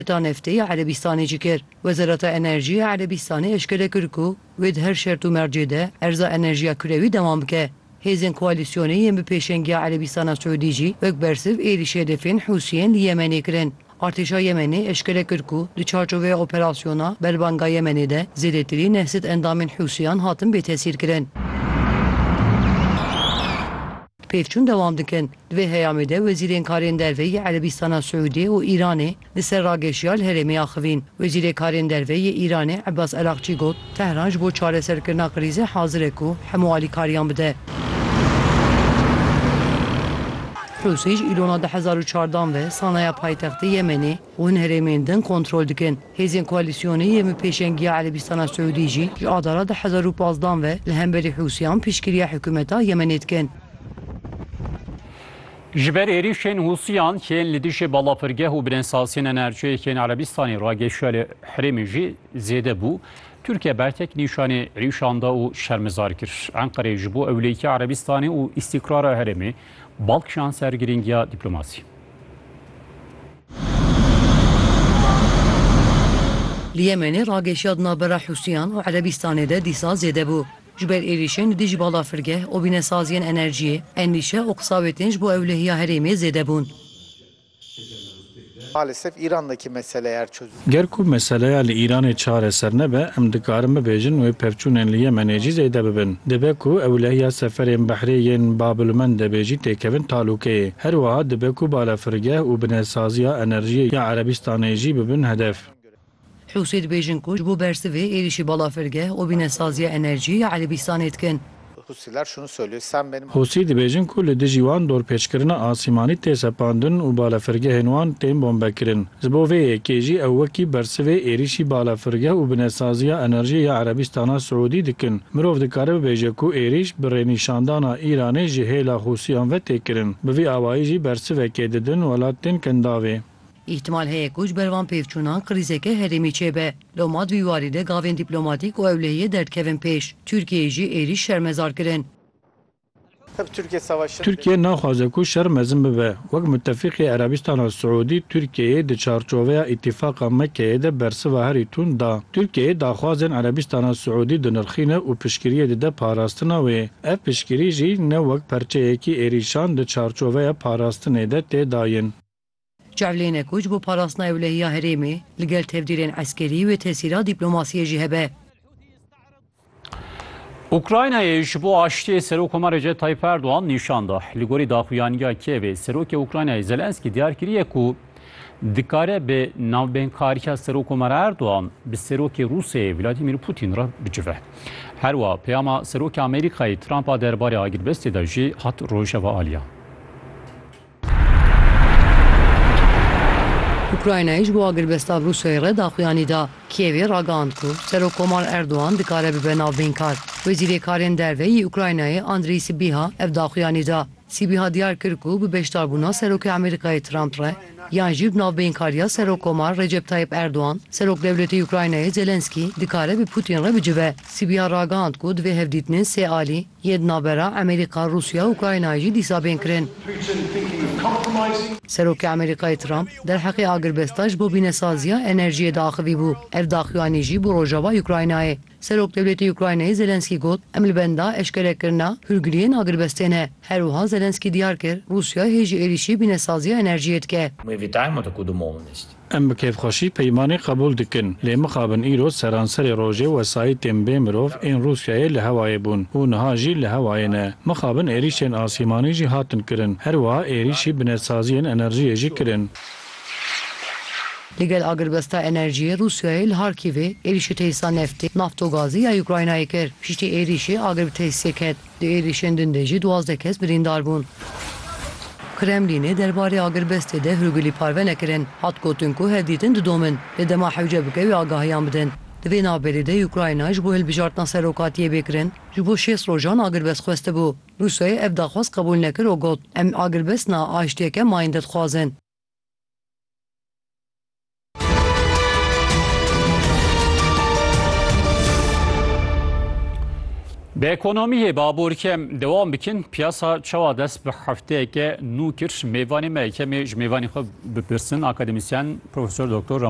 Heta neftê ya Erebîstanê jî kir. Wezareta Enerjî ya Erebîstanê eşkere kir ku wê di her şert û mercê de erza enerjiya kurewî dewam bike. Hêzên koalîsyonê yên bi pêşengiya Erebîstana Siûdî jî wek bersiv êrîş hedefên Hûsiyên li Yemenê kirin. Artêşa Yemenê eşkere kir ku di çarçoveya operasyona Berbanga Yemenê de zêdetirî neh sed endamên Hûsiyan hatin bêtesîrkirin. Pêvçûn dewam dikin. Di vê heyamê de wezîrên karên derve yê Erebîstana Siûdê û Îranê li ser rageşiya li herêmê axivîn. Wezîrê karên derve yê Îranê Ebas Erakçî got, Tehran ji bo çareserkirina krîzê hazir e ku hemû alîkariyan bide. Rûsî ji îlona du hezar û çardan ve sanaya paytextê Yemenê, Hûn herêmên din kontrol dikin. Hêzên koalîsyonê yên bi pêşengiya Erebîstana Siûdî jî ji Adara du hezar û pazdeh an ve li hemberî Hûsiyan piştgiriya hikûmeta Yemenê dikin. Ji ber êrîşên Hûsiyan kên li dijî balafirgeh û birênsaziyên enerjiyê yên Erebîstanê re geşiya li herêmê jî zêde bû. Tirkiye bertek nîşanî êrîşan da û şermezar kir Enqereyê ji bo ewleyîkê Erebîstanê û îstîkrara herêmê bal kişand ser girîngiya dîplomasî. Li Yemenê rageşiya di navbera Hûsiyan û Erebîstanê de dîsa zêde bû. Ji ber êrîşên li dijî balafirgeh û wînesaziyên enerjiyê, endîşe û qisawêtên ji bo ewlehiya herêmê zêde bûn. Ger ku meseleya li Îranê çareser nebe, em dikarin bibêjin wê pevçûnên li Yemenê jî zêde bibin. Dibe ku ew lehiya seferên behrê yên Babilmendebê jî têkevin talûkeyê. Her wiha dibe ku balafirgeh û binesaziya enerjiyê ya Erebistanê jî bibin hedef. Hûsî dibêjin ku ji bo bersivê êrîşî balafirgeh û binesaziya enerjiyê ya Erebistanê dikin. Hûsîler şunu söylüyor, sen benim Hûsî dibêjin ku li dijî wan dorpêçkirina asîmanî tê sepandin û balafirgehên wan tên bombekirin. Ji bo vê yekê jî ew wekî bersivê êrîşî balafirgeh û binesaziya enerjiyê ya Erebîstana Siûdî dikin. Mirov dikare bibêje ku êrîş bi rênîşandana Îranê ji hêla Hûsîyan ve tê kirin. Bi vî awayî jî bersivekê didin welatên Kendavê. Îhtimal heye ku ji ber van pêvçûnan krîzeke herêmî çêbe. Loma di vî warî de gavên dîplomatîk û ewlehiyê derdikevin pêş. Tirkiyeyê jî êrîş şermezar kirin. Tirkiye naxwaze ku şer mezin bibe. Wek mutefîqê Erebistana Siûdî Tirkiyeyê di çarçoveya Îtîfaqa Mekkeyê de bersiva herî tund da. Tirkiyeyê daxwazên Erebistana Siûdî dinirxîne û piştgiriyê dide parastina wê. Ev piştgirî jî ne wek perçeyekî êrîşan di çarçoveya parastinê de tê dayin. Çavlêne ku ji bo parastina ewlehiya herêmê li gel tevdîrên eskerî wê tesîra dîplomasiyê jî hebe. Ukraynayê ji bo aştiyê Serokkomar Recep Tayyîp Erdogan nîşan da. Li gorî daxuyaniya Kievê Serokê Ukraynayê Zelenskî diyar kiriye ku dikare bi navbeynkariya Serokkomar Erdogan bi Serokê Rûsyayê Vladimîr Pûtîn re bicive. Herwa peyama Serokê Amerîkayê Trumpa derbarê agirbestê de jî hat rojeva aliyan. Ukraynayê ji bo agirbesta bi Rûsyayê re daxuyanî da. Kîevê ragihand ku Serokkomar Erdogan dikare bibe navbeynkar. Wezîrê Karên Derve yê Ukraynayê Andriy Sîbîha ev daxuyanî da. Sîbîha diyar kir ku bi beşdarbûna Serokê Amerîkayê Trump re yan jî bi navbeynkariya Serokkomar Recep Tayyîp Erdogan, Serokdewletê Ukraynayê Zelensky dikare bi Putin re bicive. Sîbîha ragihand ku di vê hevdîtinê sê alî, Yê di navbera Amerîka, Rûsya û Ukraynayê jî dîsa bên kirin. Serokê Amerîkayê Trump derheqê agirbesta ji bo bînesaziya enerjiyê diaxivîbû. Ev daxuyanî jî bû rojava Ukraynayê. Serokdewletê Ukraynayê Zelenskî got, Em li benda eşkerekirina hûrgiliyên agirbestê ne. Her wiha Zelenskî diyar kir, Rûsya hê ji êrîşî bînesaziya enerjiyê dike. Em bi kêfxweşî peymanê qebûl dikin. Lê mixabin îro seranserê rojê wesayîtên bê mirov ên Rûsyayê li hewayê bûn û niha jî li hewayê ne. Mixabin êrîşên asîmanî jî hatin kirin. Her wiha êrîşî binetsaziyên enerjiyê jî kirin. Li gel agirbesta enerjiyê Rûsyayê li Harkîvê êrîşê tesîsa neftê, naftogazê ya Ukraynayê kir. Piştî êrîşê agir bi tesîsê ket. Di êrîşên din de jî duwazdeh kes birîndar bûn. Kremlînê derbarê agirbestê de hûrgulî parve nekirin. Hat gotin ku hevdîtin didomin, lê dema hewce bike wê agahiyan bidin. Di vê navberê de Ukrayna ji bo hilbijartina serokatiyê bê kirin ji bo şêst rojan agirbest xwestibû. Rûsyayê ev daxwaz qebûl nekir û got, Em agirbest na, aştiyeke mayînde dixwazin. Bi ekonomiyê baborkem dewam bikin piyasa çawa dest bi hefteyeke nû kir mêvanê me yekemê ji mêvanê xwe bipirsin akademisyen Profesör Doktor Rama